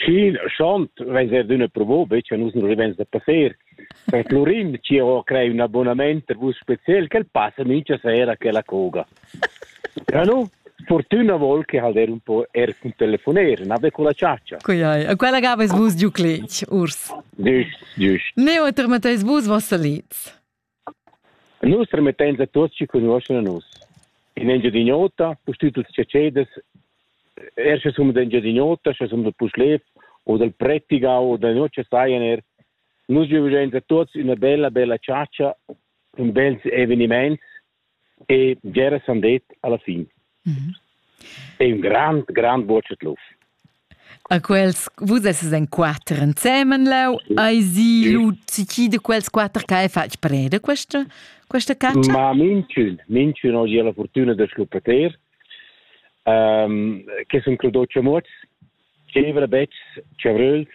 Schien schont veis er d'üna provo, be che nus non rivens da passer. Per Florin ci ho crei un abbonament per vus special che passa mincha sera a quella coga. Ja nu, fortuna vol che hal der un po er cun telefoner, nabe con la ciaccia. Coiai, a quella gaves vus giu cletg, urs. Giust, giust. Ne oter metteis vus vossa liz. Nus remettein a tuots chi cugnuoschan a nus. In Engiadin'Ota, pustüt tuots tschetscheders, er sche sun d'Engiadin'Ota, sche sun da Puschlev o dal Prettigau o da notg sajan er nus giuvains a tuots üna bella, bella chatscha, ün bels evenimaints e bgeras han det alla fin. Mm -hmm. È un grand, grand buoccet luf. A quels, vus esses en quatter ensemen leu, ai si Luci, de quels quatter che hai fatg preda questa, questa caccia? Ma minchun, minchun oggi ha la fortuna da scuppeter, um, che sono creduti mots, cevra becks, cevruls,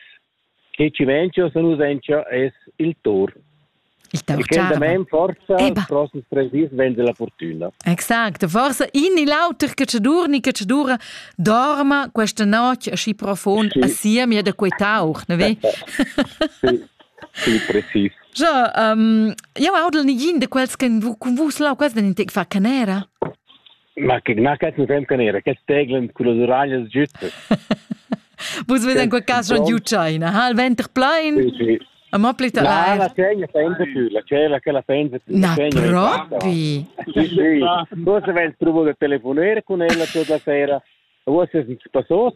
che Cimencio Sanusenca es il Tor. Il tor, e che damain forza Eba. prosses tres dis venza la fortuna. Exacto, forse in e l'auter che ci durni, che ci dura, dorma questa notte asci profond sì. assieme da quei tauch, ne ve? sì, sì, precis. Ja, um, eu audel nigin de quels che con vus lau quels den in tec fa canera. Ma che ma cazzo fem con era, che teglend con le uraglias giutte. Vus vedes in quel caso schon giù China, ha il venter plein? Sì, sì. Ma pli la la segna pensa più, la cella che la pensa più. Na propri. Sì, sì. Forse vai trovo da telefonare con ella tutta la sera. Forse si passò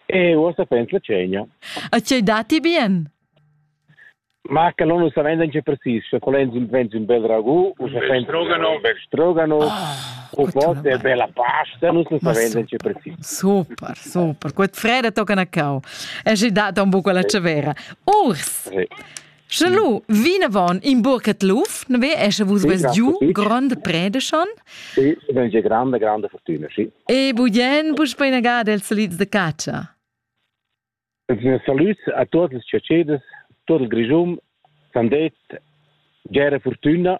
e forse pensa segna. E ci dati bien? Ma che l'on ussa venda che precis, che quel enzin vent in bel ragu, ussa vend strogano, bel strogano, u pot e bella pasta, nus ussa venda che precis. Super, super. Quet freda tocca na cau. E gi data un buco la cevera. Urs. Sì. Sche lu vinavon in burcet luf, ne ve esce vus ves giù grande prede schon. Sì, è una grande grande fortuna, sì. E buien bus poi nagada il solids de caccia. Ils salüds a tuot las chatscheders, tuot il Grischun, sandez, bgera furtüna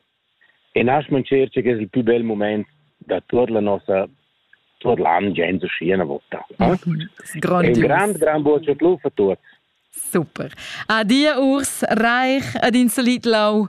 e nasch mancher che es il pü bel mumaint da tuot la nossa tuot l'an gens uschi üna vota. Grondius. E un grand, grand buob chatluf a tuots. Super. Adia Urs Reich ed in salit lau